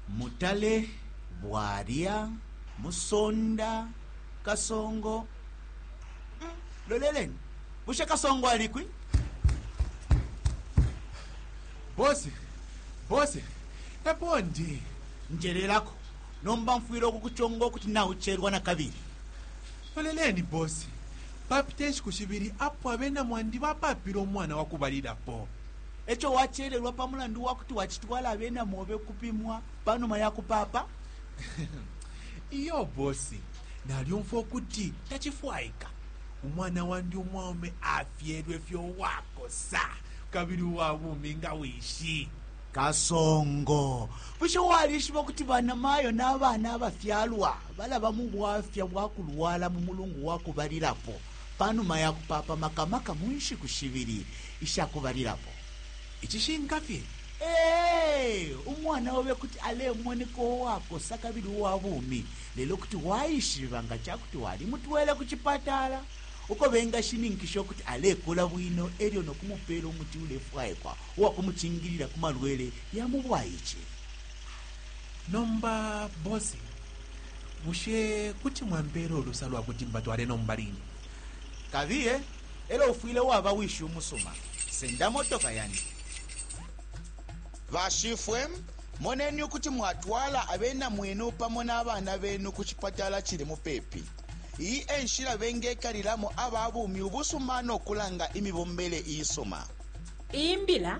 Mutale, Bwalya, Musonda, Kasongo. Mm, loleleni, bushe Kasongo alikwi? Bose, bose, epo ndi. Njelelako, nomba mfwile ukukuchonga ukuti naucherwa na kabili. Loleleni, bose, papite nshiku shibili apo abena mwandi bapapile umwana wakubalilapo. E co wacelelwa pa mulandu wa kuti wacitwala abena mobe ukupimwa pa numa ya kupaapa? Iyo bosi, nalyumfwa ukuti tacifwaika umwana wandi umwaume afyelwe fye uwakosa kabili uwa bumi nga wishi. Kasongo, bushe walishiba ukuti banamayo na bana abafyalwa balaba mu bwafya bwa kulwala mu mulungu wa kubalilapo? pa numa ya kupaapa maka maka mu nshiku shibili isha kubalilapo. Icishinka fye, ee, umwana obe kuti alemoneka uwakosa kabili uwa bumi, lelo kuti waishiba nga ca kuti walimutwele ku cipatala uko bengashininkisha ukuti alekula bwino e lyo no kumupeela umuti ulefwaikwa uwa kumucingilila ku malwele ya mu bwaice. Nomba bosi, bushe kuti mwampeela ulusa lwa kuti mbatwale nomba line? Kabiye, elo ufwile waba wishi umusuma. Senda motoka yandi. Bashifwe, moneni ukuti mwatwala abena mwenu pamo na bana benu ku cipatala cili mupepi. Iyi e nshila bengekalilamo aba bumi ubusuma no kulanga imibombele iisuma. Iyi mbila